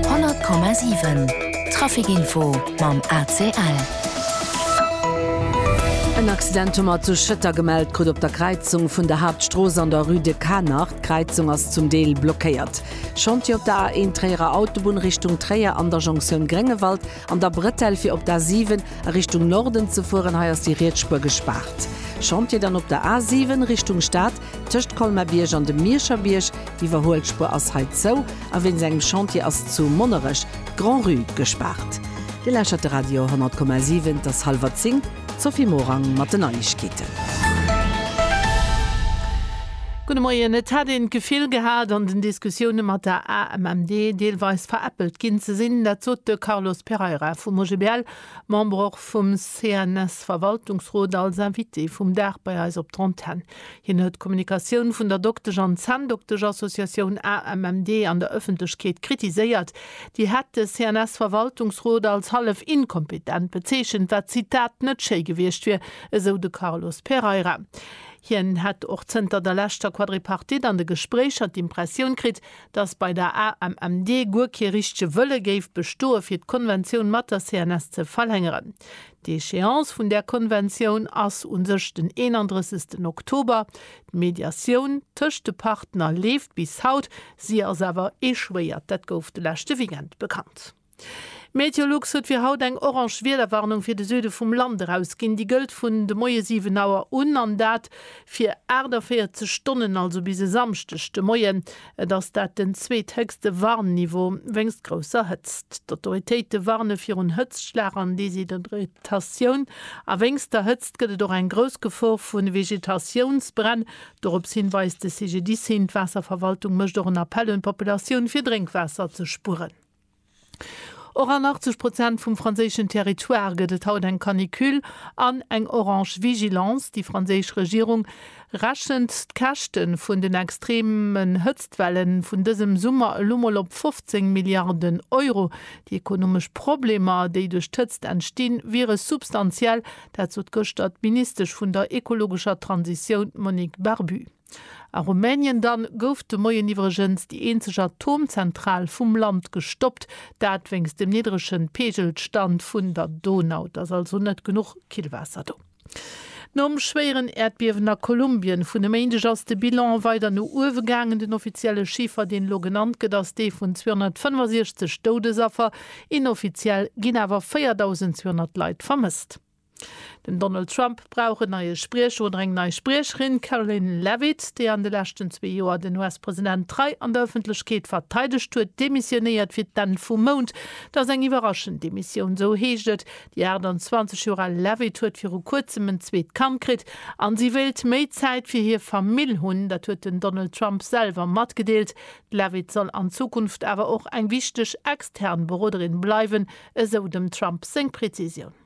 100,7 Trafic Info mam ACL. En Accident hu mer zu Schëtter gemellt krut op der Kräizung vun der Haaptstrooss an der Rue de Qaanacht. D'Kräizung ass zum Deel blockéiert. Chantier op der A1 Tréierer Autobunn Richtung Tréier an der Jonktioun Gréngewald an der Bretelle fir op d'A7 a Richtung Norden ze fueren. Hei ass déi riets Spuer gespaart. Chantier dann op der A7 Richtung Stad. Tëscht Colmar-Bierg an dem Mierscher Bierg, d'Iwwerhuelspur ass hei zou a wéinst engem Chantier ass zu Monnerech d'Grand-Rue gespaart. Dir lauschtert de Radio 10,7, et ass hallwer zéng, d'Sophie Morang mat den Neiegkeeten. Gudde Moien. Et hätt een d'Gefill gehat, an den Diskussioune mat der AMMD deelweis veräppelt ginn ze sinn. Dat sot de Carlos Pereira vum OGBL. Member och vum CNS-Verwaltungsrot, als Invité vum Dag bei eis op d'Antenn. Hien huet d'Kommunikatioun vun der Doktesch an Zänndokteschassociatioun AMMD an der Ëffentlechkeet kritiséiert. Déi hätt de CNS-Verwaltungsrot als hallef inkompetent bezeechent, wat, Zitat, net schéi gewiescht wier, esou de Carlos Pereira. Hien hätt och zënter der leschter Quadripartite an de Gespréicher d'Impressioun kritt, dass bei der AMMD guer kee richtege Wëlle géif bestoe fir d'Konventioun mat der CNS ze verlängeren. D'Échéance vun där Konventioun ass u sech den 31 Oktober. D'Mediatioun tëscht de Partner leeft bis haut, si ass awer échouéiert. Dat gouf de leschte Weekend bekannt. Meteolux huet fir haut eng orange Wiederwarnung fir de Süde vum Land erausginn. Déi gëllt vun de Moie 7 Auer un an dat fir 48 Stonnen, also bis e Samschdeg de Moien. Et ass dat den zweethéchste Warnniveau wéinst grousser Hëtzt. D'Autoritéite warne virun Hëtztschlag an Deshydratatioun a wéinst der Hëtzt gëtt et och eng grouss Gefor vu Vegetatiounsbränn. Dorops hin weist de CGDIS hin. D'Waasserverwaltung mécht och en Appell un d'Populatioun, fir Drénkwaasser ze spueren. Och an 80 Prozent vum franséischen Territoire gëtt et haut eng Canicule an eng orange Vigilance. Déi franséisch Regierung rechent d'Käschte vun den extreemen Hëtztwelle vun dësem Summer elo mol op 15 Milliarden Euro. Déi ekonomesch Problemer, déi duerch d'Hëtzt entstinn, wiere substantiell. Dat sot gëschter d'Ministesch vun der ekologescher Transitioun, Monique Barbut. A Rumänien dann gouf de Moien iwwregens déi eenzeg Atomzentral vum Land gestoppt, dat wéinst dem niddregen Peegelstand vun der Donau. Et ass also net genuch Killwaasser do. Nom schwéieren Äerdbiewen a Kolumbien vun e Méindeg ass de Bilan weider no uewe gaangen. Den offizielle Chiffer, deen elo genannt gëtt, ass dee vun 265 Doudesaffer. Inoffiziell ginn awer 4.200 Leit vermësst. Den Donald Trump brauch en neie Spriecher oder eng nei Spriecherin. D'Karoline Leavitt, déi an de leschten zwee Joer den US-President trei an der Ëffentlechkeet verteidegt huet, demissionéiert fir d'Enn vum Mount. Et ass eng iwwerraschend Demissioun, esou heescht et. Déi 28 Joer al Leavitt huet viru kuerzem en zweet Kand kritt a si wéilt méi Zäit fir hir Famill hunn. Dat huet den Donald Trump selwer matgedeelt. D'Leavitt soll an Zukunft awer och eng wichteg extern Beroderin bleiwen, esou dem Trump seng Prezisioun.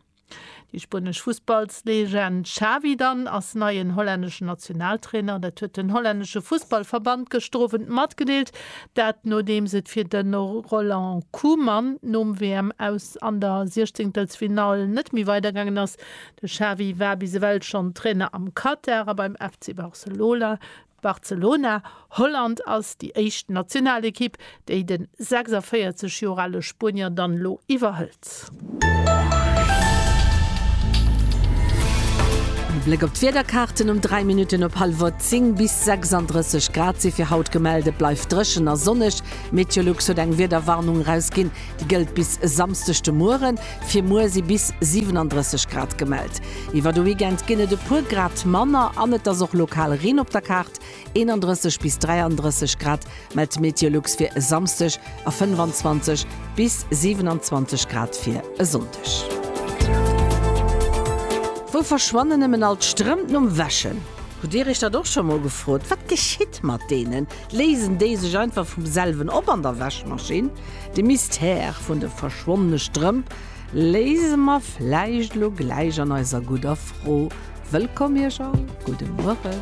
Déi spuenesch Fussballslegend Xavi dann ass neien hollänneschen Nationaltrainer. Dat huet den hollännesche Fussballverband gëschter Owend matgedeelt. Dat nodeems et fir de Roland Koeman nom WM-Aus an der Siechzeengtelsfinall net méi weidergaangen ass. De Xavi war bis ewell schonn Trainer am Katar a beim FC Barcelona. Barcelona, Holland ass déi éischt Nationalekipp, déi de 46 Joer ale Spuenier dann elo iwwerhëlt. E Bléck op d'Wiederkaarten, Um 3 Minutten op hallwer 10 bis 36 Grad si fir haut gemellt. Et bleift dréchen a sonneg. Meteolux huet eng Wiederwarnung erausginn, déi gëllt bis e Samsdeg de Mueren. Fir muer si bis 37 Grad gemellt. Iwwer de Weekend ginn et e puer Grad manner an et ass och lokal Reen op der Kaart. 31 bis 33 Grad mellt d'Meteolux fir e Samsdeg a 25 bis 27 Grad fir e Sonndeg. Wou verschwannen nëmmen all d'Strëmp nom Wäschen? Hutt Dir Iech dat och scho mol gefrot? Wat geschitt mat deenen? Léisen déi sech einfach vum selwen op an der Wäschmaschinn? De Mystère vun de verschwonnene Strëmp léise mer vläicht elo gläich an eiser gudder Fro. Wëllkomm iech all, gudde Mueren.